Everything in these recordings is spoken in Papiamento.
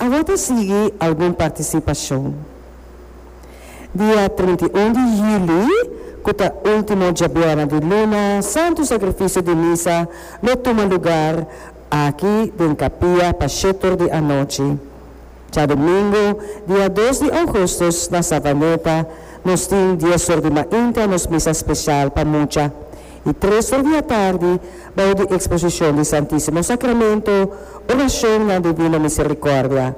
Awor ta sigui algun partisipashon. Dia trinta i un di huli, ku ta último djabièrna di luna, Santu Sakrifisio di Misa lo tuma lugar aki den kapia pa shetor di anochi. Djadumingu, dia dos di ougustus, na Savaneta, nos tin dies or di mainta nos Misa speshal pa mucha. Di tres or di atardi, bou di Exposicion di Santisimo Sacramento, Oracionnan Divino Misericordia,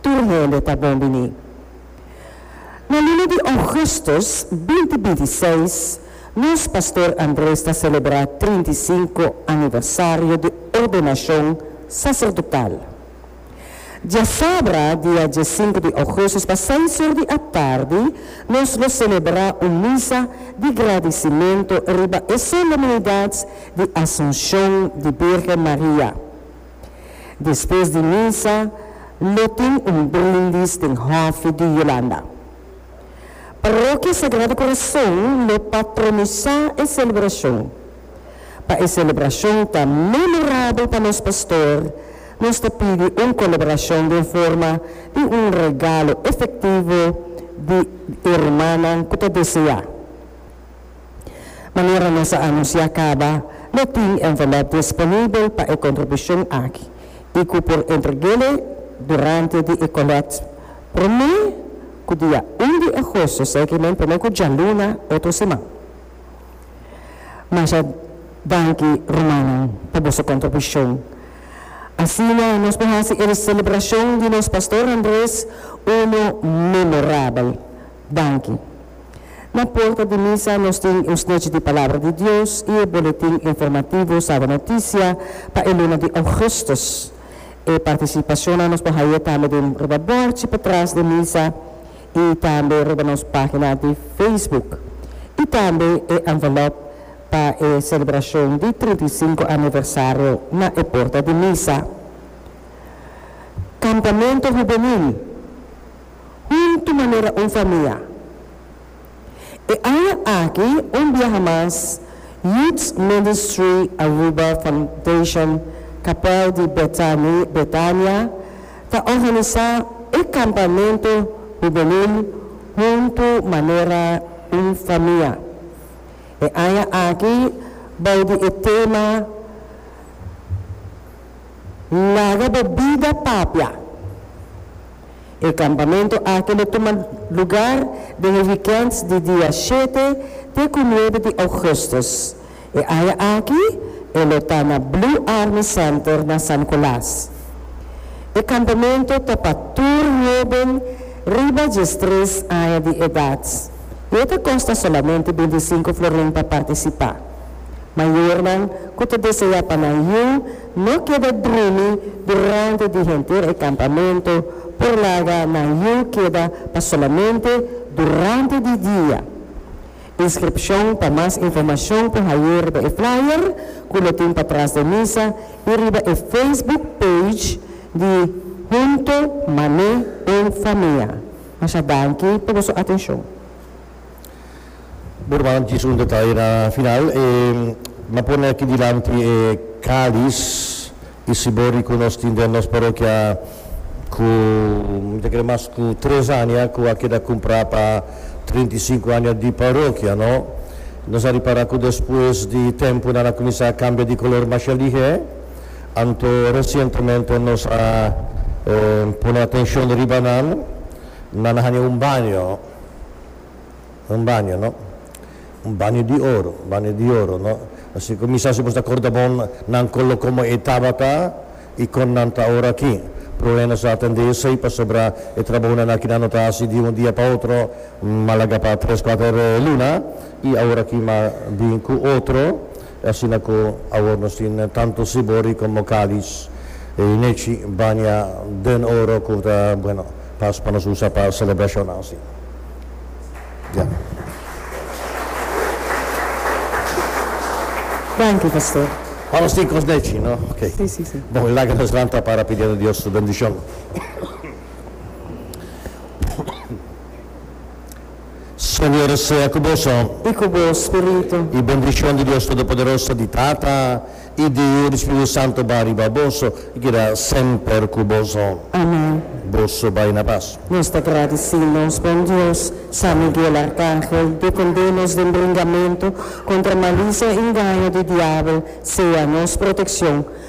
tur hende ta bon bini. Na luna di Augustus binti binti i seis, nos Pastor Andres ta celebra trinta i sinku aniversario di ordenacion sacerdotal. Diasabra, dia diesinku di ougustus, pa seis or di atardi, nos lo selebrá un misa di gradisimentu riba e solemnidat di Asunshon di Birgen Maria. Despues di misa lo tin un brindis den hòfi di Yolanda. Parokia Sagrado Corazon lo patronisá e selebrashon. Pa e celebracion ta memorabel pa nos pastor, nos ta pidi un colaboracion den forma di un regalo efectivo di e rumannan cu ta desea. Manera nos a anuncia caba, lo tin envelop disponibel pa e contribucion aki y cu por entreg'e durante di e collect prome cu dia un di agosto, segue men prome cu djaluna otro siman. Masha danki rumannan pa boso kontribushon. Asina nos por hasi e selebrashon di nos Pastor Andres unu memorabel. Danki. Na porta di misa nos tin un snechi di Palabra di Dios i e boletin informativo Saba Noticia pa e luna di Ougustus. E partisipashonnan nos por haye tambe den riba bòrchi patras den misa. i tambe riba nos pagina di Facebook i tambe e envelop pa e selebracion di trinta i sinku aniversario na e porta di misa. Campamento Juvenil Huntu manera un famia! E aña aki un biaha mas Youth Ministry Aruba Foundation Kapèl di Betania ta organisá e kampamentu hubenil Huntu Manera un Famia. E aña aki bou di e tema Laga bo bida papia. E kampamentu aki lo tuma lugar den e wikènt di dia shete te ku nuebe di ougùstùs. E aña aki e lo ta na Blue Army Center na San Nikolas. E kampamentu ta pa tur hóben riba diestres aña di edat i e ta kosta solamente bintisinku florin pa partisipá. Mayornan ku ta deseá pa nan yu No keda drumi durante di henter e kampamentu por laga nan yu keda pa solamente durante di dia. Inskripshon pa mas informashon por hañ'é riba e flyer ku lo tin patras den misa i riba e Facebook page di Hunto Mane en Famia. Masha danki pa boso atenshon. Bueno, m'a djis un detaye na final. E m'a pone aki dilanti e calis y sibori cu nos tin den nos parokia cu mi ta cre mas cu tres aña cu a keda cumpra pa trinta y cinco aña di parokia, no? Nos a ripara cu despues di tempo nan a cuminsa cambia di color masha lihe, anto recientemente nos a pone atencion riba nan, nan a haña un baño. Un baño, no? Un baño di oro, un baño di oro, no? Así cu mi sa si bo ta corda bon nan colo como e tabata y con nan ta ora aki. Proe nos a atende esey pasobra e trabounan aki nan no ta haci di un dia pa otro, malaga pa tres, cuater luna y awor aki mi a bin cu otro. E asina cu awor nos tin tanto Sibori como Calis. E nechi baña den oro cu ta bueno pas pa nos usa pa celebracionnan si. Ya. Danki, Pastor. Ora nos tin cos nechi, no? Ok. Si, si, si. Bon, e laga nos lanta para pidiendo Dios su bendicion. Señor sea cu boso. I cu bo spiritu. I bendicion di Dios Todopoderoso, di Tata, i di Yu, di Spiritu Santo bai riba boso i keda semper cu boso. Amen. Boso bai na pas. Nos ta gradici nos bon Dios, San Miguel Arcangel, defunde nos den bringamentu contra malicia i ngaño di diabel, sea nos proteccion.